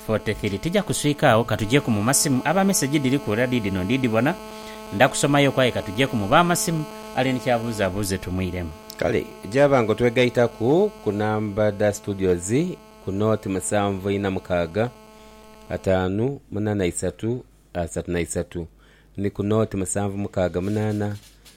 43 tija kuswika agho katujeku mu masimu aba message dhiri ku era dhidhino ndi dhibona nda kusomayoku aye katujeku mu ba masimu ali ni kya buuza abuuze tumwiremu. Kale gyaba nga otwegaitaku ku namba dha studios ku nought musanvu ina mukaaga ataanu munana isatu asatu na isatu ni ku nought musanvu mukaaga munana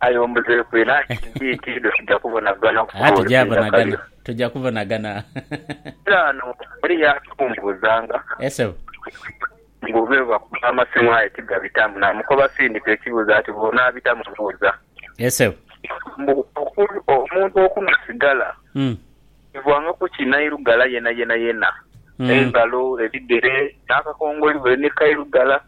Aye ombuzeeku eno anti mbiitidho tuja kubonagana ku Aa tugya Lusinda bonagana. Kaliro. Tugya kubonagana. Kale ano eriyo atumbuuzanga Yes sebo. mbu be bakuba amasimu aye tigabitamu. Namukoba sindika ekibuuzo ati bw'onaabitamu mbuuza. Yes sebo. Mbu oku omuntu okunhwa sigala Mm. kivanga ku ki nairugala yenayenayena? Mm. Engalo, ebigere, n'akakongoli buli ni kairugala.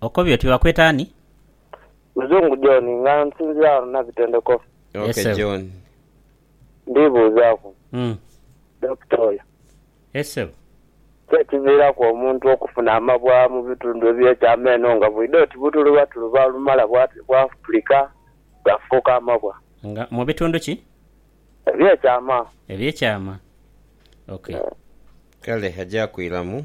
Okobye oti bakweta ani? Muzungu John nga nsinzira ghano Nabitendeko. Yes sebo. Ndibuuzaaku Dokita oyo. Yes sebo. Ki ekiviiraku omuntu okufuna amabwa mu bitundu eby'ekyama eno nga bwidha oti butulubatuluba olumala bwafulika bwafuuka amabwa? Nga mu bitundu ki? Eby'ekyama. Eby'ekyama. Ok. Kale agya kwiramu.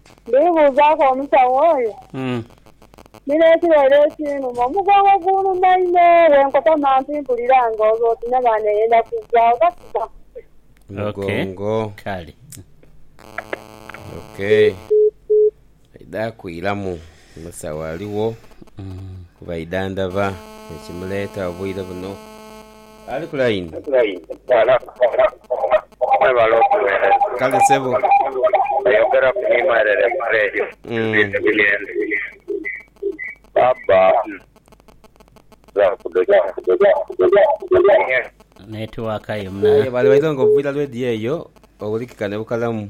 Ndibuuzaaku omusawo oyo, ni n'ekireere ekinuma, omugongo gunuma inho. Bwe nkota mantu mpulira ng'oti n'amaani eyenda kuggwaawo. Kasita mugongo. Kale. Okay. Aidha kuiramu. Musa waligho ku baidha ndaba ekimuleeta obwire buno. Ali ku layini? Mwebale otuwereza. Kale sebo. Oyogeraku ni mwerere ku Radio Embidhi Buyenzi. Baba Netiwaka ye munaye. Aye bwali baidha nga oviira Radio eyo owulikika ne bukalamu.